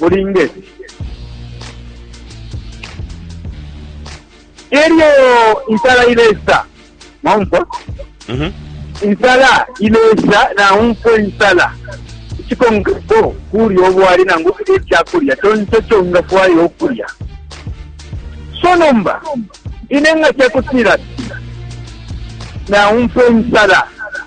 ulinge elyo insala ilesa mwaumfwa mhm. insala ilesa naumfwa insala ikikongepo kulya obwali nangu okulya ekyakulya kyonse kyongafwayo okulya so nomba ine nga kyakutira naumfwa insala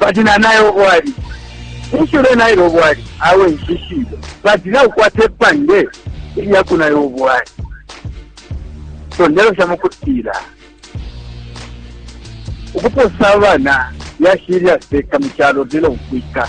Bati nanaye obwali ninshi ulenaila obwali awe nshishibe bati naukwata epange ilyakunaya obwali so ndelosha mukutila ukuposa abana yashilya seka mu kyalo lelo nkwika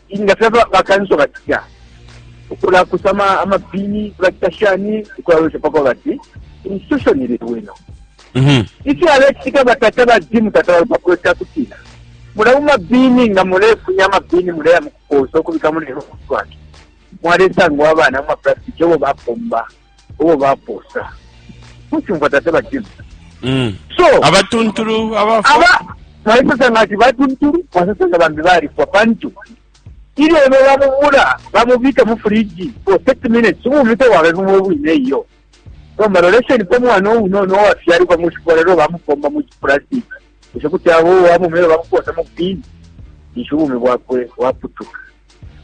Inga filya bakanso bacita ukulakusa ama pini bacita shani ukulalosha pako bati institution ili bwino mhm. ifyo alecitika batata ba jimu tata balupapuro cakutila mula mumabini nga mulefunya amabini muleya mukuposa okubika mulero kutwaki mwalesangwa abana mumaplastic obo bapomba uwo baposa kuchumva tate bajim mm. so abatuntulu abafa aba baisasanga ati batuntulu basasanga bambi balifwa pantu ilyo ebe bamubula bamubika mu furiji for 30 minutes ubumi tewaba bumwe bwine iyo nomba lolesheni po mwana ounono owafyalibwa mu shikola lelo bamupomba mu kiplastic esho kuti abo wamumele bamuposa mu bini nisho ubumi bwakwe waputuka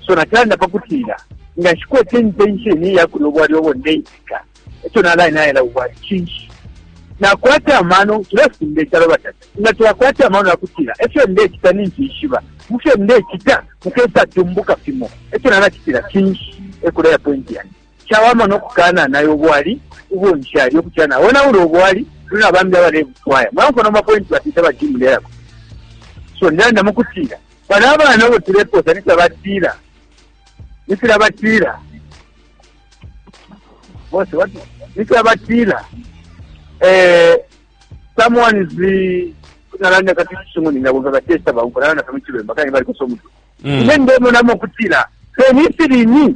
so natalanda pa kutila nga nshikwete intention ya kulya ubwali obo ndeipika ekyo nalaye nayela ubwali kinshi nakwata amano tulafunda ekyalo batata nga teyakwata amano yakutira efyo ndekita ninjishiba mufyo ndekita mukesa tumbuka fimo ekyo nanakitira kinshi ekuleya pointi yange Cawama no kukananaya ubwali ubo nshalya ukucila naonaula ubwali kuli na bambi abalebufwaya. Mulaumfwa nomba pointi batita ba Jim ndelako? So ndalanda mu kutila bana abana abo tulepoosa ni filya batila ni filya batila bonse wati ni filya batila eh, someone is the nalanda kati chisungu ndingabomba batesta bauko nalanda kama chibemba kani bali kusomutu mm. ine ndemonamo kutila fenifilini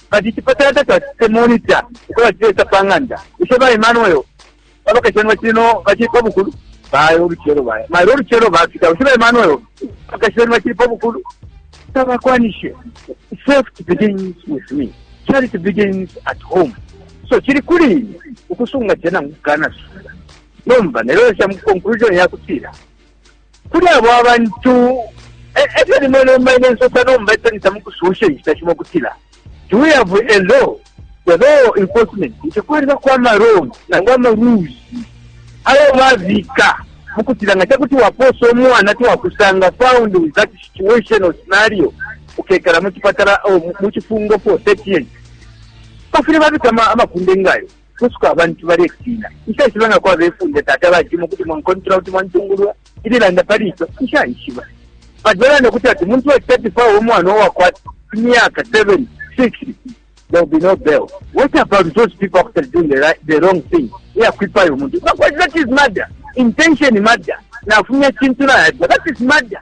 Kati icipatala tacacitile monita uko bacileta pa ng'anda, bushe ba Emmanuel na bakashana bacili no bacili pa bukulu? Baya ulucelo baya mailo ulucelo bafika. Bushe ba Emmanuel na bakashana bacili pa bukulu? Tabakwanishe. Safety begins with me. Charity begins at home. So cili kuli ine ukusunga cena ngukanasunga. Nomba nelolesha mu conclusion yakutila kuli abo abantu e, e fyo limwe nomba ine nsosa nomba etalisa mu kususha inshita shimo kutila do we have a law the law enforcement nti kwalibako amarole nangu amarules ayo babika mu kutila nga kyakuti wapoosa omwana tiwakusanga found with that situation or scenario ukekala mu kipatala oh, mu kifungo for thirty years bafire babika amakunde ngayo kusuka abantu balektina. Nshaishiba nga kwaba ifunde tata batimo kuti mwankontrola kuti mwantungulua ililanda pali ico nshaishiba. But balanda kuti ati muntu wa chitatu fawe umwana uwakwata imyaka 7, 6 there will be no bail. What about those people who are doing the, right, the wrong thing? Yeah, kwipaya umuntu. But that is murder. Intention murder. Nafunya chintu na yadwa. That is murder.